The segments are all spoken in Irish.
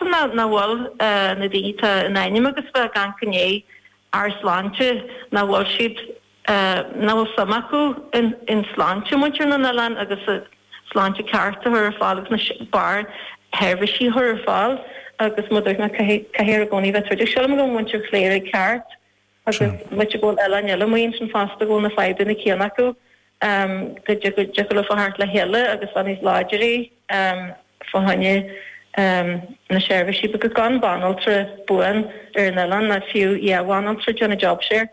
Cuma nach bhfuil na daoine atá in ainm agus bheith ag amharc i ndiaidh ár sláinte, nach bhfuil siad, nach bhfuil suim acu in sláinte muintir na n-oileán agus sláinte ceart a chur ar fáil agus na barr sheirbhísí a chur ar fáil agus mar a dúirt mé caithfear i gcónaí bheith ag troid agus sílim go bhfuil muintir Chléire ceart. agus b'fhéidir go bhfuil oileáin eile amuigh ansin fosta go bhfuil na fadhbanna céanna acu, go dtiocfadh leofa theacht le chéile agus bheith níos láidre fá choinne na seirbhísí, agus gan banaltra buan ar an oileán, ná fiú dhá bhanaltra déanamh job share.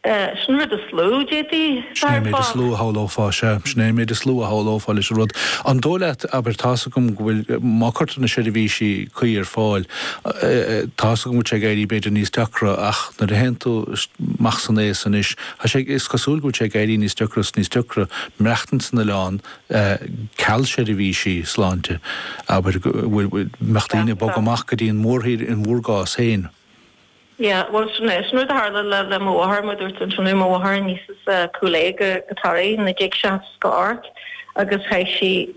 Sin an rud is lú a d'fhéadfaí, Sin é an méid is lú a shamhlófá, sea. Sin é an méid is lú a shamhlófá leis an rud. An dóigh leat, abair, tá's agam go bhfuil, má cuirtear na seirbhísí cuí ar fáil, Tá's agam go bhfuil sé ag éirí b'fhéidir níos deacra ach nuair a théann tú amach san aos anois, tá sé, is cosúil go bhfuil sé ag éirí níos deacra is níos deacra maireachtaint san oileán, ceal seirbhísí sláinte, abair, go mbeadh daoine ag bogadh amach go dtí an mhórthír in bhur gcás féin. Yeah, bhuel sin é, sin rud a tharla le, le mo mháthair, mar a dúirt ansin ó mo mháthair, aníos as Cúil Aodha go, go Toraigh 1968 agus chaith sí,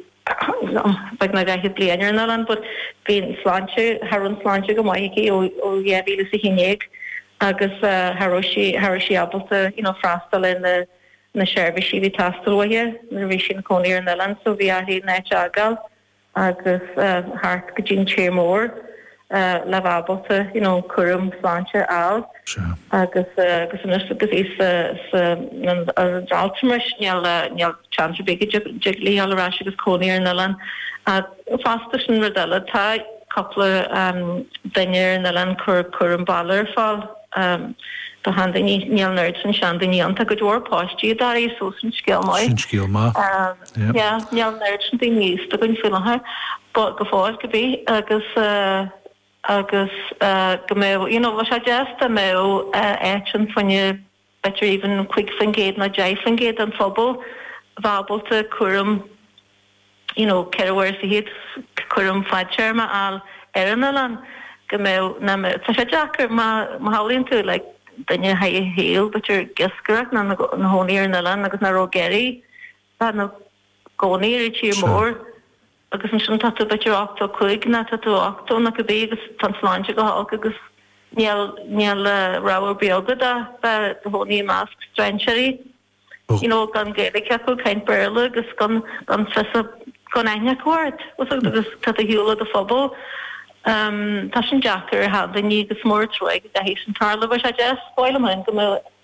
beagnach 40 bliain ar an oileán but bhí an sláinte, cha raibh an sláinte go maith aici ó 2011 agus cha raibh sí, cha raibh sí ábalta you know freastal ar na, na seirbhísí a bhí ag teastáil uaithe nuair a bhí sí ina cónaí ar an oileán so bhí uirthi an áit a fhágáil agus theacht go dtí an tír mór. le bheith ábalta you know cúram sláinte a fháil agus agus anois agus í sa sa an altranais níl níl seans ar bith go dtig léi dul ar ais agus cónaí ar an oileán ach fosta sin rud eile tá cúpla duine ar an oileán cur cúram baile ar fáil do sheandaoine níl an oiread sin seandaoine againn, tá go leor páistí i dToraigh so sin scéal maith sin scéal maith Níl an oiread sin daoine aosta againn faoi láthair, go fóill cibé, agus, agus go mbeadh, you know, bheadh sé deas dá mbeadh áit ann fá choinne, b'fhéidir even cúig faoin gcéad ná deich faoin gcéad den phobal bheith ábalta cúram, you know, ceithre huaire is fiche, cúram fadtéarma a fháil ar an oileán, go mbeadh, ná mbeadh, tá sé deacair má, má shamhlaíonn tú like duine a chaith a shaol, b'fhéidir ag iascaireacht ná ina chónaí ar an oileán agus nach raibh ag iarraidh. bheith ina gcónaí ar an tír mór agus ansin tá tú b'fhéidir 85 ná tá tú 80 ná cibé agus tá an tsláinte go holc agus níl níl rogha ar bith agat ach bheith do chónaí i measc strainséirí you know gan Gaeilge acu caint Béarla agus gan gan fios gan aithne acu ort agus tá tú ar shiúl ó do phobal um, tá sin deacair ar sheandaoine agus is mór an truaighe go gcaithfidh sin tarlú, bheadh sé deas b'fhearr liom go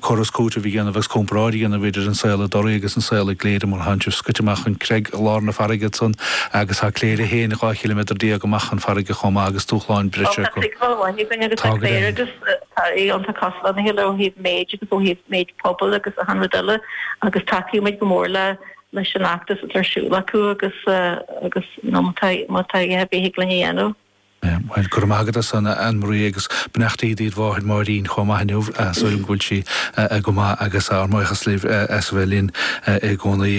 córas cúitimh a dhéanamh agus comparáid a dhéanamh idir an saol i dToraigh agus an saol i gCléire mar thánn sibh scoite amach chun Creig i lár na farraige ansan agus tá Cléire féin dhá chiliméadar déag amach chun farraige chomh maith agus dúshláin breise acu. Tá seiceáil amháin againn agus tá Cléire agus Toraigh iontach cosúil lena chéile ó thaobh méid agus ó thaobh méid pobail agus achan rud eile agus tacaíonn muid go mór leis an fheachtas atá ar siúl acu agus má tá a dhath ar bith a thig linn a dhéanamh. Bhuel, go raibh maith agat as san, Anne-Marie agus beannachtaí dtí do mháthair Máirín chomh maith inniu, tá súil agam go bhfuil sí go maith agus ár mbuíochas libh as a bheith linn i gcónaí.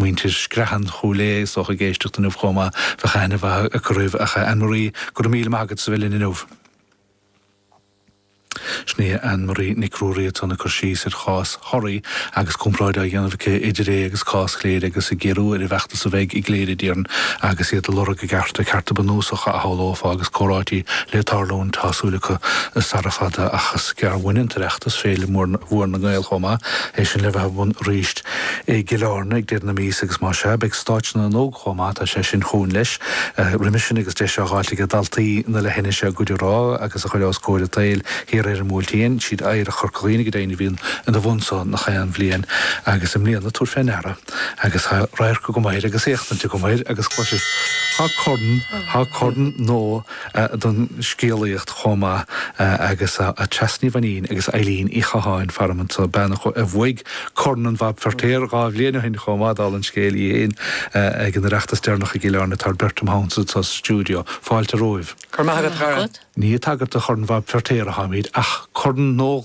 Muintir Screathan Chúil Aodha is dócha ag éisteacht inniu chomh maith, bheadh aithne mhaith acu oraibh. Ach a Anne-Marie, go raibh míle maith agat as a bheith linn inniu. Sin í Ann Marie Nic Ruairí ansan ag cur síos ar chás Thoraí agus comparáid á dhéanamh aici idir é agus cás Chléire agus ag díriú ar an bhfeachtas a bheidh i gCléire d'iarann agus iad ag lorg a gcearta, cearta bunúsacha a shamhlófá agus comhráití le tarlúint tá súil acu sara fada ach is gearr uainn an tOireachtas, Féile Mhór na nGael chomh maith, é sin le bheith ar bun arís. i gCill Airne ag deireadh na míosa agus más ea, beidh Stáitse na nÓg chomh maith, tá sé sin chugainn leis, roimhe sin agus deis á dh'fháilt aige daltaí na leithinise a gcuid a rá agus a chur os comhair an tsaoil thiar ar an mBuailtín. Siad Oidhreacht Chorca Dhuibhne go deimhin a bhíonn ina bhun so nach aon bhliain agus i mbliana, tabhair fé ndeara, agus tá radharc agam air agus éachtaint agam air agus clois, tá corn, tá corn nua. don scéalaíocht chomh maith agus tá Treasa Ní Mhainín agus Éilín Uí Chatháin, faram anso, bean a bhuaigh Corn an Bhab Feirtéar dhá bhliain ó shin chomh maith, dála an scéil í féin, ag an Oireachtas deireanach i gCill Airne. Tá an bheirt agam anso sa stiúideo. Fáilte romhaibh. Go raibh maith agat, a chara. Ní ag tagairt do Chorn an Bhab Feirtéar a tháimid ach corn nua.